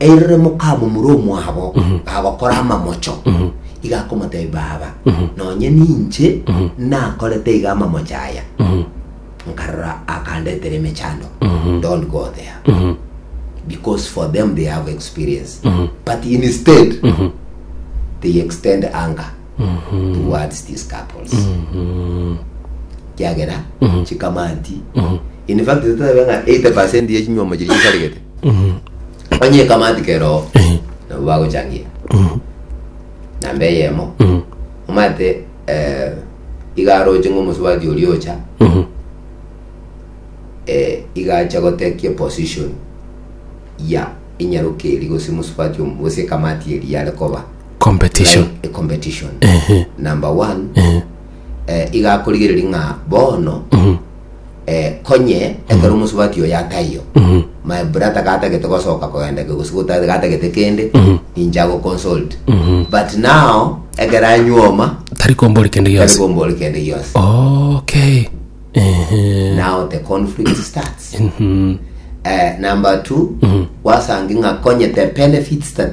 Erire mokamomura omwabo agokora amamocho, iga akomotebia, Baba, nonye ninche nakorete iga amamocho aya, nkarora akandetera emechando. Don't go there. Because for them they have experience. But instead, they extend anger towards these couples. kiagera chikamanti in fact totebe ng'a 80% ye chinywomo chiria chisaregete Onye ekamati keroo nabo bagochangia namba eyemo omate eh, igaroche ng'a omosubati oria ocha eh, igacha gotekia position ya enyaroka eri gose mosubati omo gose ekamati eri yare koba competition like a competition Ehe. number one eh, igakorigereria ng'a bono eh, konye ekero omosubati oyo ataiyo my brother gatagete gosoka kogenda ke gose gotari gatagete kende inche agoconsult but now ekero anyuoma tari kombori kende tari gionsi kombori kende gionsi okay Ehe. now the conflict starts Mhm. Eh, number two wasange ng'a konye the benefits that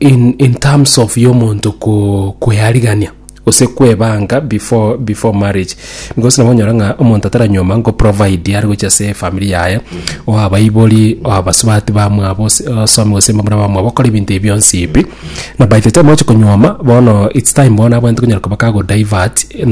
in in terms of yomonto ko kwearigania gose kwebanga before before marriage because nabo onyora ng'a omonto ataranyuoma nko provide are gochia ase efamiri yaye oabaibori oabasubati bamwabo ose osomi gose mbamura bamwabo okore ebinto ebi bionsi ebi na by the time ochi konyuoma bono it's time bono abwenerete konyara koba kago divert